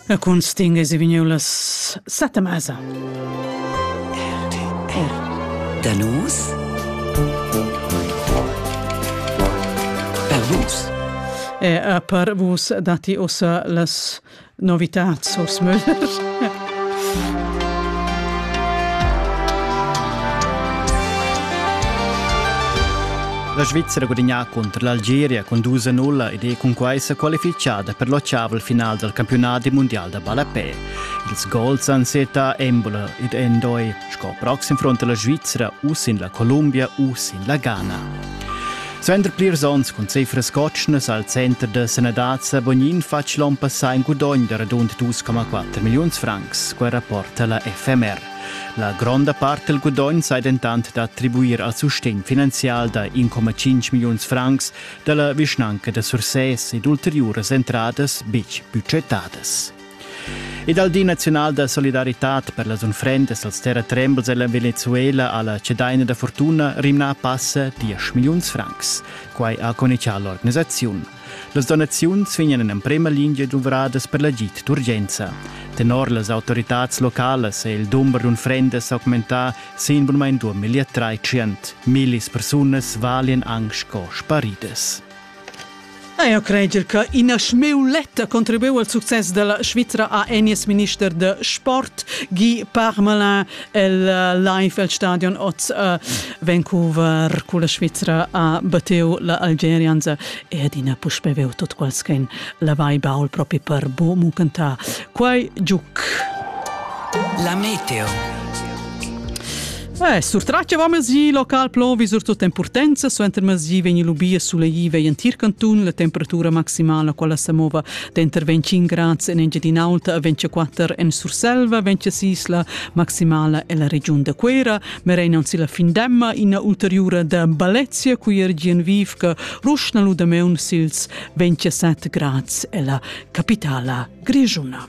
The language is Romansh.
La cunsting es vegniu las sette mesa. Da nus? Per vus? E per vus dati ussa las novitats, Urs Müller. La Svizzera ha gudagnà cunter l'Algeria cun dus a nulla ed è cunquai sa qualifichada per l'ottavel final dal campiunadi mundial da ballapè. Ils gols han setta Embolo ed Endoi sco proxim front la Svizzera u sin la Columbia u sin la Ghana. Suenter plirs onns cun cifras cotschnas al center da sanadad sa Bognin fatg l'onn passà in gudogn da radund 2,4 milliuns francs, quai rapporta la FMR. La gronda part del gudogn sei dentant da attribuir al sustegn finanzial da 1,5 milliuns francs dalla vischnanca da Sursès ed ulteriuras entradas betg budgetadas. E dal Di naziunal da solidaritad per las unfrendas als terratrembels ella Venezuela ha la cedaina da fortuna rimnà passa 10 milliuns francs. Quai ha conichà l'organisaziun. Las donaziuns vegnan en emprema lingia duvradas per l'agid d'urgenza. Tenor las autoritads localas è il dumber d'unfrendas augmentà sin bunmain 2000. Millis persunas valian anc sco sparidas. Eir crajer che ina schmeuletta contribuiu al success dalla Svizra ha enies minister da sport Guy Parmelin el eh, live el stadion oz a eh, Vancouver culla Svizra ha batteu la Algerians e adina puspe veu tot qualschen la vai baul propi per bo mucanta quai giuc La meteo Eh, surtratg va mesi local plovi surtut en purtenza, suenter mesi vegn lubia sulegì vei en tir cantun, la temperatura maximala quella sa mova denter 25 grads en Engiadin'Alta, 24 en Surselva, 26 la maximala en la regiun de Quera, merenan si la fin demma ina ulteriura da Balezia, cui er Gienviv che ruschna ludameun sils 27 grads e la capitala grigiuna.